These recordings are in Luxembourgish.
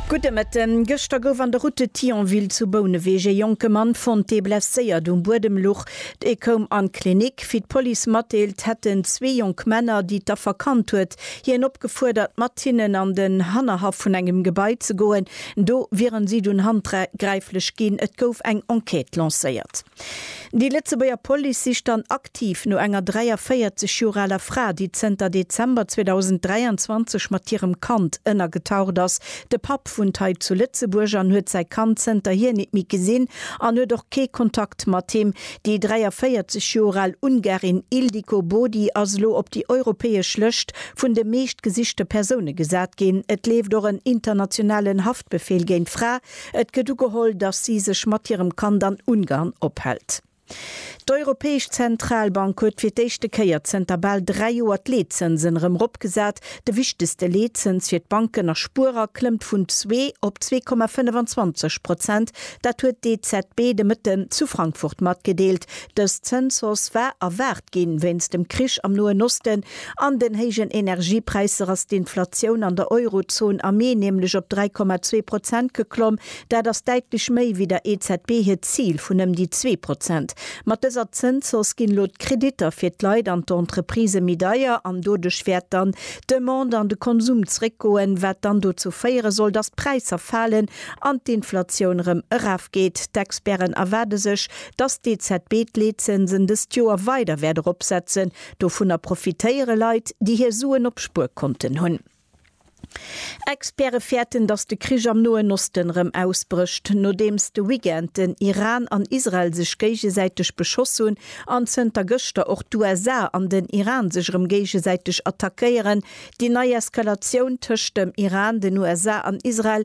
Gudde Mëtten. Gëschter gouf an der Route de Thionville zu Bouneweg ee jonke Mann fonnt, dee blesséiert um Buedem luch. E koum an d'Klinik. Wéi d'Police matdeelt, hätten zwee jonk Männer, déi d'Affer kannt huet, hien opgefuerdert, mat hinnen an den Hannerhaff vun engem Gebai ze goen. Do wieren si dunn handgräiflech ginn. Et gouf eng Enquête lancéiert. Déi Lëtzebuerger Police sicht dann aktiv no enger 43 Joer aler Fra, déi zënter Dezember 2023 mat hirem Kand ënnergetaucht ass. De Papp wunnt hei zu Lëtzebuerg an huet säi Kand zënterhier nit méi gesinn an huet och kee Kontakt mat him. Déi 43 Joer al Ungarin Ildiko Body ass elo op déi europäesch Lëscht vun de meescht gesichte Persoune gesat ginn. Et leeft och en internationalen Haftbefeel géint d'Fra, Et gëtt ugeholl, datt si sech mat hirem Kand an Ungarn ophält. D'Europäesch Zentralbank huet fir d'éischte Kéier zënter bal dräi Joer d'Leetzënsen erëm eropgesat. De wichtegste Leetzëns fir d'Banken a Spuerer klëmmt vun zwee op zwee Komma 25 Prozent. Dat huet d'EZB de Mëtten zu Frankfurt matgedeelt. Dës Zënshausse war erwaart. Verstoppt ginn. Wéinst dem Krich am Noen Osten an den héijen Energiepräisser ass d'Inflatioun an der Eurozon am Mee nämlech op 3,2 Prozent geklomm. Dat ass däitlech méi wéi der EZB hiert Zil vun ëm déi zwee Prozent. Mat dëser Zënshausse ginn elo d'Kreditter fir d'Leit an d'Entreprisë méi deier an doduerch wäert dann d'Demande an de Konsum zréckgoen, wat dann dozou féiere soll, datt d'Präisser falen an d'Inflatioun erëm erafgeet. D'Experten erwaarde sech, Dass d'EZB d'Leetzinsen dëst Joer weider wäert eropsetzen, dovunner profitéiere Leit, déi hir Suen op Spuerkonten hunn. Experte fäerten, dass de Krich am Noen Osten erëm ausbrécht, nodeems de Weekend den Iran an Israel sech géigesäiteg beschoss hunn an zënter gëschter och d'USA an den Iran sech erëm géigesäiteg attackéieren. Déi nei Eskalatioun tëscht dem Iran, den USA an Israel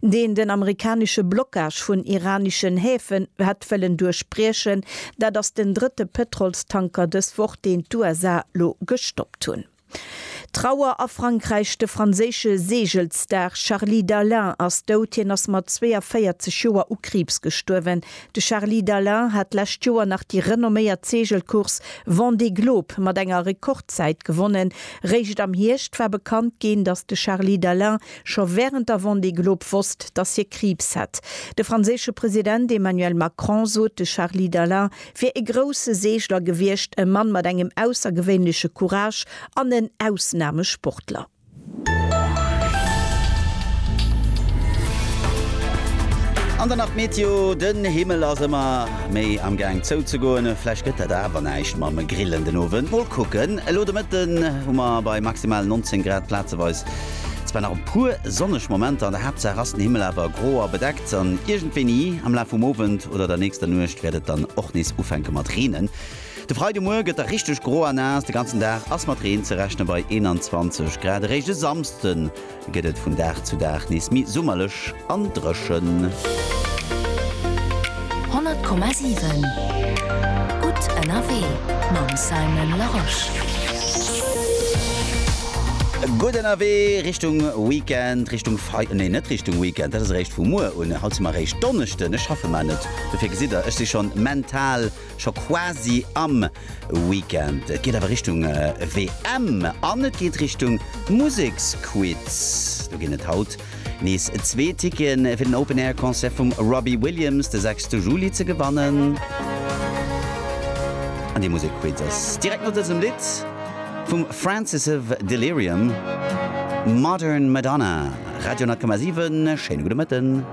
deen den amerikanesche Blockage vun iraneschen Häfen hätt wëllen duerchbriechen. Dat ass den drëtte Pëtrolstanker dës Woch, deen d'USA lo gestoppt hunn. Trauer a Frankräich, De franséische Seegelsstar Charly Dalin ass dout. Hien ass mat 42 Joer u Kriibs gestuerwen. De Charly Dalin hat d'lescht Joer nach déi renomméiert Seegelcourse Vendée Globe mat enger Rekordzäit gewonnen. Réischt am Hierscht war bekannt ginn, datt de Charly Dalin scho wärend der Vendée Globe wosst, datt hie Kriibs hätt. De franséische President Emmanuel Macron sot, de Charly Dalin wier e grousse Seegler gewiescht, e Mann mat engem aussergewéinleche Courage an en Ausnamesportler. An dann nach d'Meteo, Den Himmel ass ëmmer méi am Gaang zouzegoen, vläicht gëtt dat awer näischt mam Grillen den Owend. Mol kucken, elo de Mëtten hu mer bei maximal 19 Grad plazeweis Zwar nach e puer sonneg Momenter, an der Haaptsaach ass den Himmel awer gro a bedeckt, an iergendwéini am Laf vum Owend oder der nächster Nuecht wäert et dann och nees ufänke mat reenen. De Freidemuer gëtt da richteg gro a naass, de ganzen Dag ass mat Reen ze rechne bei 21 Grad. Eréischt e Samsden gëtt et vun Dag zu Dag nees méi summerlech. an dréchen. 100,7 Gutt ënnerwee mam Simon Larosche. Gutt ënnerwee Richtung Weekend, Richtung Fei, nee net Richtung Weekend, dat ass eréischt vu muer un. Haut si mer eréischt Donneschden, ech schaffe mar net, dofir gesitt Der, ech si schonn mental. Scho quasi am Weekend. Et geet awer Richtung WM an et geet Richtung Museksquiz. Do ginn et haut nees zwee Ticketen fir den Open Air Concert vum Robbie Williams de 6 Juli ze gewannen. An dee Musekquiz ass direkt no dësem Lidd vum Francis of Delirium, Modern Madonna. Radio 10,7, schéine gudde Mëtten.